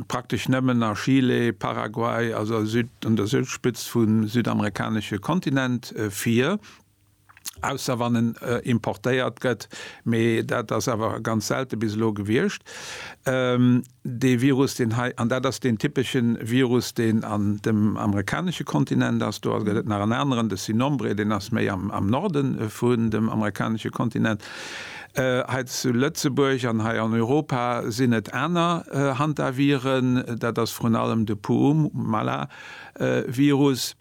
praktesch nëmmen a Chile, Paraguay, also un der Südspëtzt vum südamerikanesche Kontinent, vir, ausser wann en importéiert gëtt, mee dat ass awer ganz selte bis elo gewiescht. Dee Virus, deen hei, an dat ass deen typesche Virus, deen an dem amerikanesche Kontinent ass, do gëtt et nach en aneren, de Sinombre, deen ass méi am Norde vun dem amerikanesche Kontinent, Hei zu Lëtzebuerg an hei an Europa sinn et aner Hantaviren. Dat ass vrun allem de Puumala-Virus,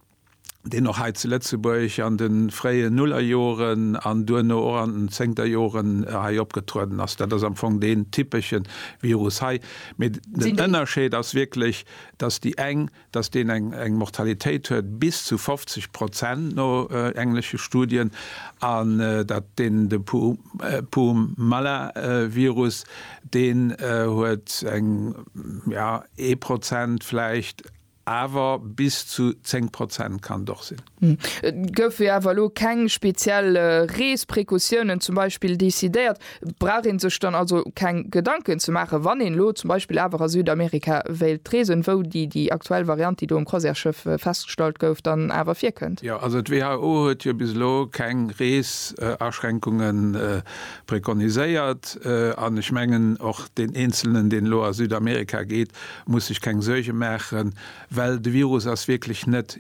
deen och hei zu Lëtzebuerg an de fréie Nullerjoren an duerno och an den Zéngterjoren hei opgetrueden ass. Dat ass am Fong deen typesche Virus hei. Mee den Ënnerscheed ass wierklech, dass déi eng datt deen eng Mortalitéit huet bis zu 50 Prozent no englesche Studien, an datt deen de Puumala-Virus, deen huet eng, jo, ee Prozent vläicht, awer bis zu 10 Prozent kann et och sinn. Et goufe jo awer elo keng speziell Reesprekautionen zum Beispill decidéiert. Brauch ee sech dann also keng Gedanken ze maachen, wann een elo zum Beispill awer a Südamerika wéilt reesen, wou déi déi aktuell Variant, déi do um Croisièresschëff festgestallt gouf, dann awer virkënnt? Jo, also d'WHO huet jo bis elo keng Reesaschränkungen prekoniséiert. An ech mengen, och deen Eenzelnen, deen elo a Südamerika geet, muss sech keng Suerge maachen, well de Virus ass wierklech net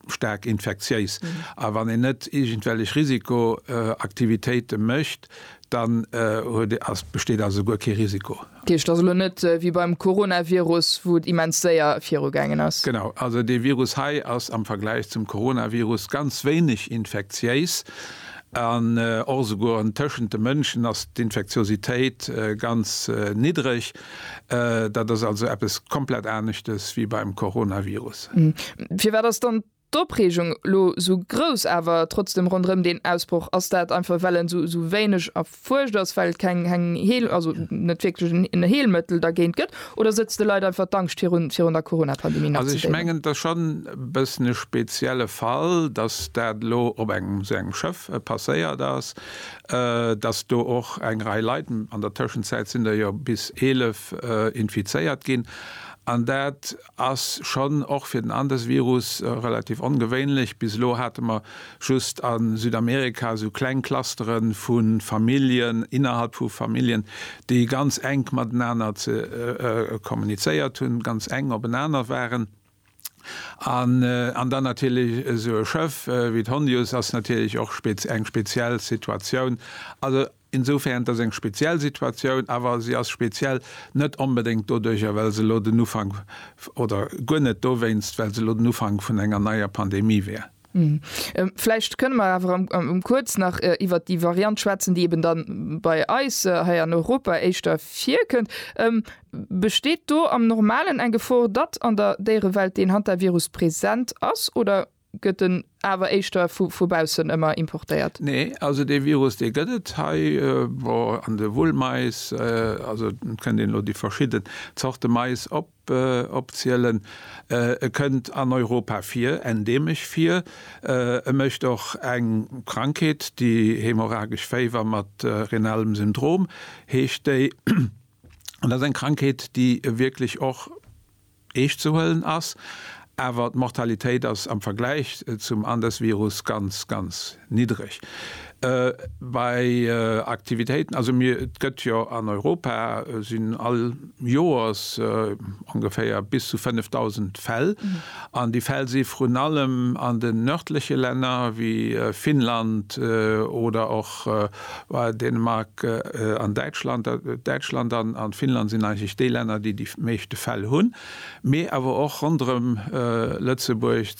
staark infektiéis. A wann een net iergendwellech Risikoaktivitéite mécht, dann huet, ass, besteet also guer kee Risiko. Dat heescht, et ass elo net wéi beim Coronavirus, wou et immens séier virugaangen ass. Genau. Also dee Virus hei ass am Vergläich zum Coronavirus ganz wéineg infektiéis an och esouguer tëschent de Mënschen ass d'Infektiositéit ganz niddreg. Dat ass also eppes komplett aneschtes wéi beim Coronavirus. Firwat ass dann d'Opreegung elo esou grouss awer trotzdeem ronderëm deen Ausbroch? Ass dat einfach well en esou wéineg erfuerscht ass, well et keng Heel, also net wierklech en Heelmëttel dergéint gëtt? Oder sëtzt de Leit einfach d'Angscht virun virun der Coronapandemie nach ze déiwen? Also ech mengen et ass schonn e bëssen e spezielle Fall, datt dat elo op engem esou engem Schëff passéiert ass. dass do och eng Rei Leit, an der Tëschenzäit sinn der jo bis 11, infizéiert ginn. An dat ass schonn och fir den Andesvirus relativ ongewéinlech. Bis elo hate mer just a Südamerika esou kleng Clustere vu Familljen, innerhalb vu Familljen, déi ganz enk matenaner kommunizéiert hunn, ganz enk openaner waren. An dann natierlech esou e Schëff wéi d'Hondius ass natierlech och eng speziell Situatioun. Also insofern, et ass eng speziell Situatioun, awer se ass speziell net onbedéngt doduerjer, well se elo den Ufank, oder guer net dowéinst, well se elo den Ufank vun enger neier Pandemie wär. Vläicht kënne mer awer kuerz nach iwwert déi Variant schwätzen, déi eben da bei eis hei an Europa éischter virkënnt. Besteet do am Normalen eng Gefor, datt an der Déierewelt deen Hantavirus present ass oder gëtt en awer éischter vu baussen ëmmer importéiert? Nee, also dee Virus dee gëtt et hei, bon an de Wullmais, also kënnt een elo déi verschidde Zorte Mais op. Be opzielen. E kënnt an Europa vir, endeemesch vir. E mécht och eng Krankheet, déi hämorrhagesch Féiwer mat renalem Syndrom heescht déi. An dat ass eng Krankheet, déi wierklech och eescht ze huelen ass. Awer d'Mortalitéit ass am Vergläich zum Andesvirus ganz, ganz niddreg. Bei Aktivitéiten, also mir, et gëtt jo an Europa sinn all Joers ongeféier bis zu 5.000 Fäll, an déi Fäll si vrun allem an den nërdleche Länner wéi Finnland oder och Dänemark an Däitschland. Däitschland an Finnland sinn eigentlech déi Länner, déi déi meeschte Fäll hunn. Mee awer och ronderëm Lëtzebuerg,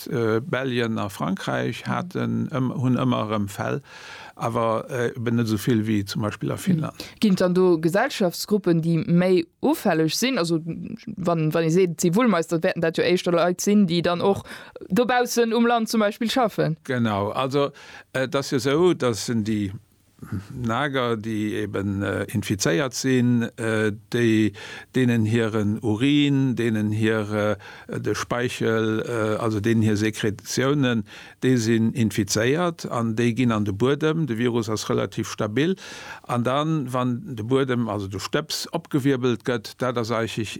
Belgien a Frankräich haten, hunn ëmmer erëm Fäll, awer eben net esou vill wéi zum Beispill a Finnland. Ginn et dann do Gesellschaftsgruppen, déi méi ufälleg sinn? Also wann ee seet, et si Wullmeister, wäerten dat jo éischter Leit sinn, déi dann och dobaussen um Land zum Beispill schaffen. Genau, also et ass jo esou, datt déi Nager, déi eben infizéiert sinn, déi deenen hiren Urin, deenen hir de Speichel, also deenen hir Sekretionen, déi sinn infizéiert an déi ginn an de Buedem. De Virus ass relativ stabil an dann, wann de Buedem, also de Stëbs opgewierbelt gëtt, dat ass eisig.